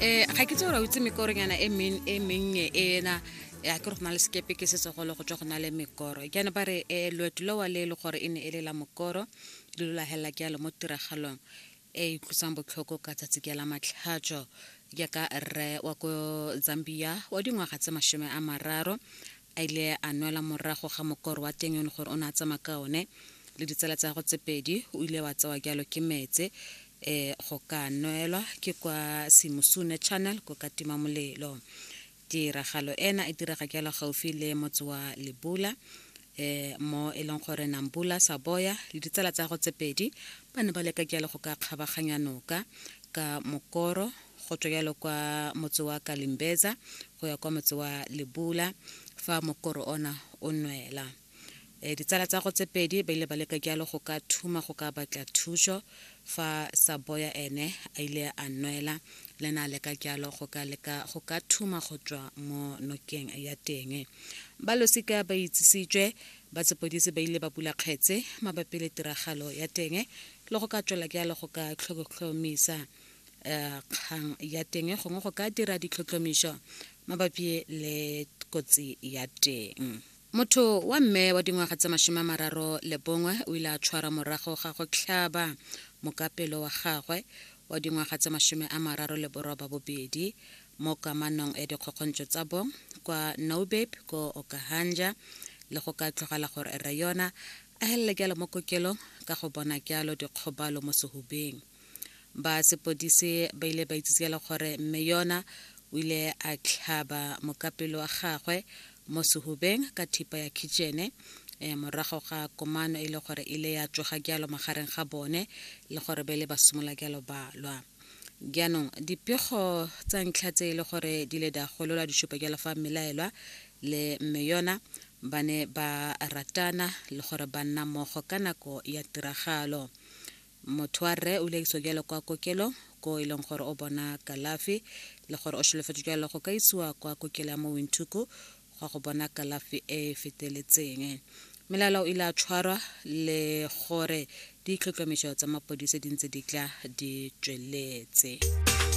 um ga ke tse gore o itse mekoronyana e e mennye ena ya ke re go na le sekepe ke setsogolo go tswa go na le mekoro jaana ba re um loeto lewa le e le gore e ne e le la mokoro le lo lagelela ke yalo mo tiragalong e e tlosang botlhoko ka tsatsi ke la matlhatso jaaka rre wa ko zambia wa dingwaga tse masome a mararo A ile a nwela morago ga mokoro wa teng yo ne gore o ne a tsamaya ka one le ditsala tsa gagwe tse pedi, o ile wa tsewa jalo ke metse e go ka nwelwa ke kwa Simusune Channel ko Katima Molelo. Tiragalo ena e direga jalo gaufi le motse wa Lebula e mo e leng gore Nambula Saboya le ditsala tsa gagwe tse pedi ba ne ba leka jalo go ka kgabaganya noka ka mokoro go tswa yalo kwa motse wa kalimbeza go ya kwa motse wa lebula fa mokoro ona o nwela e, ditsala tsa go tse pedi ba ile ba leka jalo go ka thuma go ka batla thuso fa saboya ene a ile a nwela le na leka jalo go ka leka go ka thuma go tswa mo nokeng ya teng ba losika ba itsisitswe ba tsepodisi ba ile ba bula kgetse mabapi le tiragalo ya teng le go ka tswela jalo go ka tlhokotlhomisa um kgang ya teng gongwe go ka dira ditlhotlhomišo mabapi le kotsi ya teng motho wa mme wa dingwaga tse masome a mararo le bongwe o ile a tshwara morago ga go tlhaba mokapelo wa gagwe wa dingwaga tse masome a mararo le boroba bobedi mo kamanong ya dikgokgontšo tsa bong kwa naubeb ko okahanja le go ka tlogela gore re yona a helele jalo mo kokelong ka go bona jalo dikgobalo mo sehubeng ba sepodise ba ile ba itsise le gore mme yona o ile a tlhaba mokapelo wa gagwe mo sehubeng ka thipa ya kitšene um morago ga komano e le gore e ile ya tsoga jalo magareng ga bone le gore ba ile ba simolola jalo ba lwa jaanong dipego tsa ntlha tse e le gore di le da golola di supa jalo fa mmelaelwa le mme yona ba ne ba ratana le gore ba nna mmogo ka nako ya tiragalo Motho wa rre o ile a isiwa jalo kwa kokelong ko e leng gore o bona kalafi le gore o sholofetse jalo go ka isiwa kwa kokelo ya mo Windhoek gwa go bona kalafi e e feteletseng. Melala o ile a tshwarwa le gore ditlhotlhomiso tsa mapodise di ntse di tla di tsweletse.